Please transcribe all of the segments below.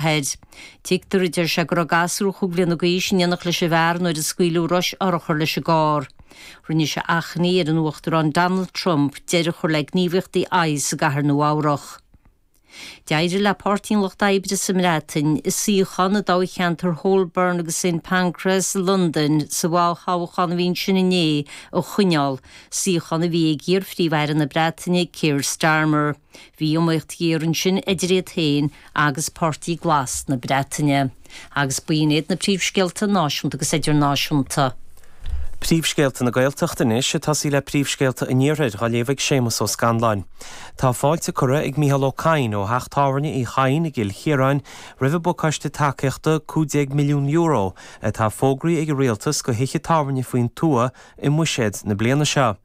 thoir. Tuigtear, a deir sé, go raibh gasúr chúig bhliana d'aois in éindí leis an bhfear nuair a scaoileadh rois urchar leis an gcarr. Rinne sé achainí ar an Uachtarán Donald Trump deireadh a chur le gníomhaíochtaí ICE i gCathair Nua-Eabhrac. D'éirigh le Páirtí an Lucht Oibre sa mBreatain an suíochán i dtoghcheantar Holborn agus Saint Pancras i Londain sa bhfo-thoghchán a bhí ansin inné a choinneáil, suíochán a bhí ag iar-Phríomh-Aire na Breataine Keir Starmer. Bhí iomaíocht ghéar ansin idir iad féin agus Páirtí Glas na Breataine. Agus b'in iad na príomhscéalta náisiúnta agus idirnáisiúnta. Príomhscéalta na Gaeltachta anois ag tosaí le príomhscéalta an Iarthair dhá léamh ag Séamas Ó Scanláin. Tá fáilte curtha ag Micheál Ó Cadhain ó theach tábhairne Uí Chadhain i gCill Chiaráin roimh an bpacáiste tacaíochta €15 milliún atá fógraí ag an Rialtas do thithe tábhairne faoin tuath i mbuiséad na bliana seo.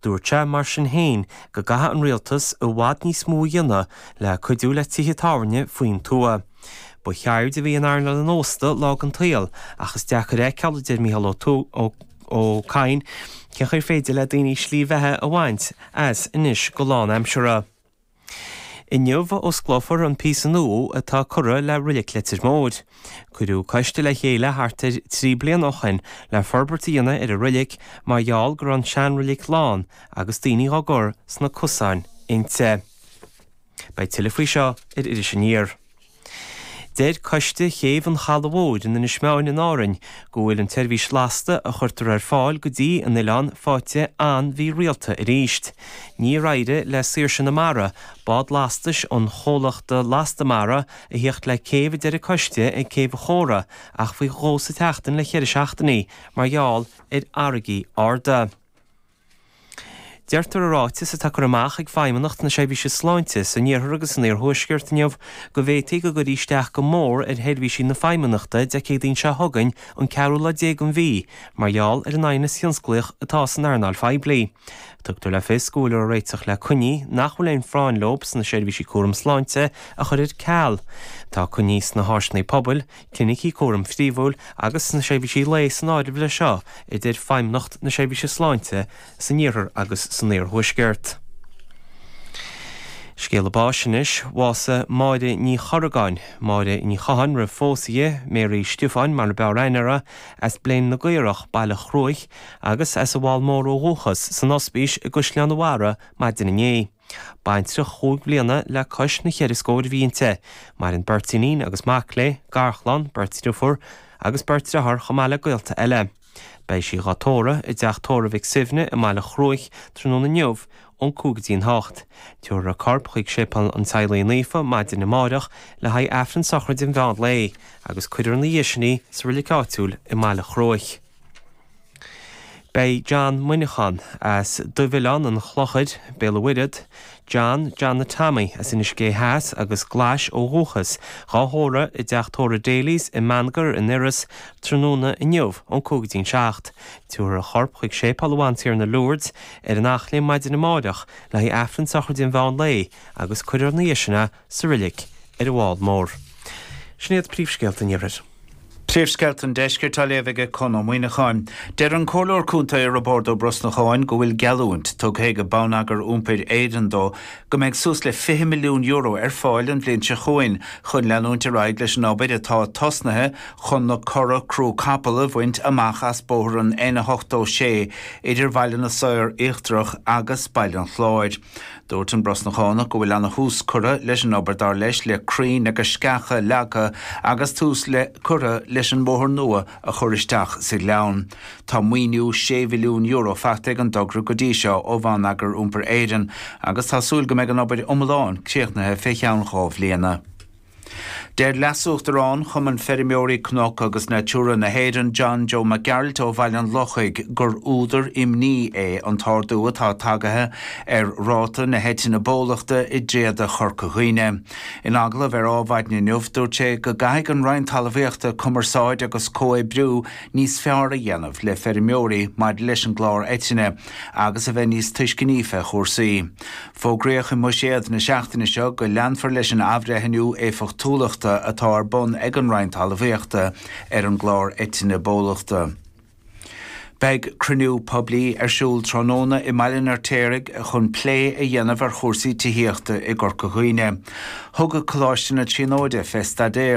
Dúirt sé, mar sin féin, go gcaithfidh an rialtas i bhfad níos mó a dhéanamh le cuidiú le tithe tábhairne faoin tuath. Ba cheird a bhí in earnáil an ósta lá den saol ach is deacair a fheiceáil, a deir Micheál Ó Cadhain, cén chaoi ar féidir le daoine slí bheatha a bhaint as anois go lánaimseartha. Inniu a osclófar an píosa nua atá curtha le Reilig Leitir Móir. Cuireadh coiste le chéile thart ar trí bliana ó shin le forbairt a dhéanamh ar an reilig mar gheall go raibh an seanreilig lán agus daoine dhá gcur sna cosáin inti. Beidh tuilleadh faoi seo ar Iris Aniar. Deir Coiste Chéibh an Chalaidh Mhóir in Inis Meáin in Árainn go bhfuil an tseirbhís lasta a chuirtear ar fáil go dtí an oileán faighte an-mhí-rialta arís. Níor éirigh le Saoirse na Mara, bád lastais an chomhlachta Lasta Mara, a thíocht le céibh a deir an coiste ag Céibh an Chóra ach faoi dhó sa tseachtain le ceithre seachtainí mar gheall ar fharraigí arda. Deirtear i ráiteas atá curtha amach ag Feidhmeannacht na Seirbhíse Sláinte san iarthar agus san iarthuaisceart inniu go bhféadfadh go gcuirfí isteach go mór ar sheirbhísí na Feidhmeannachta Dé Céadaoin seo chugainn, an ceathrú lá déag den mhí, mar gheall ar an aighneas tionsclaíoch atá san earnáil phoiblí. Tugtar le fios go bhfuiltear ag réiteach le coinní nach bhfuil aon phráinn leo sna seirbhísí cúraim sláinte a chur ar ceal. Tá coinní sna háiseanna pobail, Clinicí Cúraim Phríomhúil agus sna Seirbhísí Lae san áireamh leis seo, a dúirt Feidhmeannacht na Seirbhíse Sláinte san Iarthar agus san Iarthuaisceart. Scéala báis anois, bhásaigh Máire Ní Chorragáin, Máire Ní Chatháin roimh phósadh di, Mary Stiofáin mar a b'fhearr aithne uirthi, as Bléan na gCaorach, Baile Chruaich, agus as an Mheall Mór ó dhúchas san Ospís i gCaisleán a' Bharra maidin inné. Baintreach cúig bliana le cois na gceithre scór bhlianta. Maireann beirt iníon agus mac léi, garchlann, beirt dhriofúr agus beirt dheartháir chomh maith le gaolta eile. Beidh sí dhá tórramh i dTeach Tórraimh Mhic Suibhne i mBaile Chruaich tráthnóna inniu, ón cúig go dtí an hocht. Tabharfar a corp chuig Séipéal an Teaghlaigh Naofa maidin amáireach le haghaidh Aifreann sochraide an mheán lae, agus cuirfear ina dhiaidh sin í sa reilig áitiúil i mBaile Chruaich. Beidh John Muineacháin, as Duibhoileán an Chlochair, Béal an Mhuirthead, John Johnny Tommy as Inis Gé Theas agus Glais ó dhúchas, dhá thórramh i dTeach Tórraimh Daly's i mBaingear in Iorras tráthnóna inniu ón cúig go dtí'n seacht. Tabharfar a chorp chuig Séipeál Bhantiarna Lourdes ar an Eachléim maidin amáireach le haghaidh Aifreann sochraide an mheán lae agus cuirfear ina dhiaidh sin é sa reilig ar an bhFál Mór. Sin iad príomhscéalta an Iarthair. Príomhscéalta an Deiscirt á léamh ag Conn Ó Muíneacháin. Deir an Comhairleoir Contae Roibeárd Ó Brosnacháin go bhfuil geallúint tugtha ag Bonneagar Iompair Éireann dó go mbeidh suas le €20 milliún ar fáil an bhliain seo chugainn chun leanúint ar aghaidh leis an obair atá tosnaithe chun na cora crú capall a bhaint amach as bóthar an N86 idir Bhaile na Saor Íochtarach agus Baile an Chláir. Dúirt an Brosnachánach go bhfuil ana-thús curtha leis an obair dar leis le crainn agus sceacha leagtha agus tús curtha leis an mbóthar nua a chur isteach sa ghleann. Tá maoiniú €6 mhilliún faighte ag an dtogra go dtí seo ó Bhonneagar Iompair Éireann agus tá súil go mbeidh an obair iomlán críochnaithe fé cheann dhá bhliana. Deir Leasuachtarán Chumann Feirmeoirí Cnoc agus Natura na hÉireann, John Joe Mac Gearailt ó Bhaile an Lochaigh, gur údar imní é an t-ardú atá tagaithe ar ráta na heitinne bólachta i dtréada Chorca Dhuibhne. In agallamh ar Ádh Mhaidin inniu, dúirt sé go gcaithfidh an Roinn Talmhaíochta cumarsáid agus comhoibriú níos fearr a dhéanamh le feirmeoirí maidir leis an gclár eitinne agus a bheith níos tuisceanaí fé chúrsaí. Fógraíodh i mBuiséad na seachtaine seo go leanfar leis an athbhreithniú éifeachtúlachta atá ar bun ag an Roinn Talmhaíochta ar an gclár Eitinne Bólachta. Beidh cruinniú poiblí ar siúl tráthnóna i mBaile an Fheirtéaraigh chun plé a dhéanamh ar chúrsaí tithíochta i gCorca Dhuibhne. Thug Coláiste na Tríonóide fé staidéar.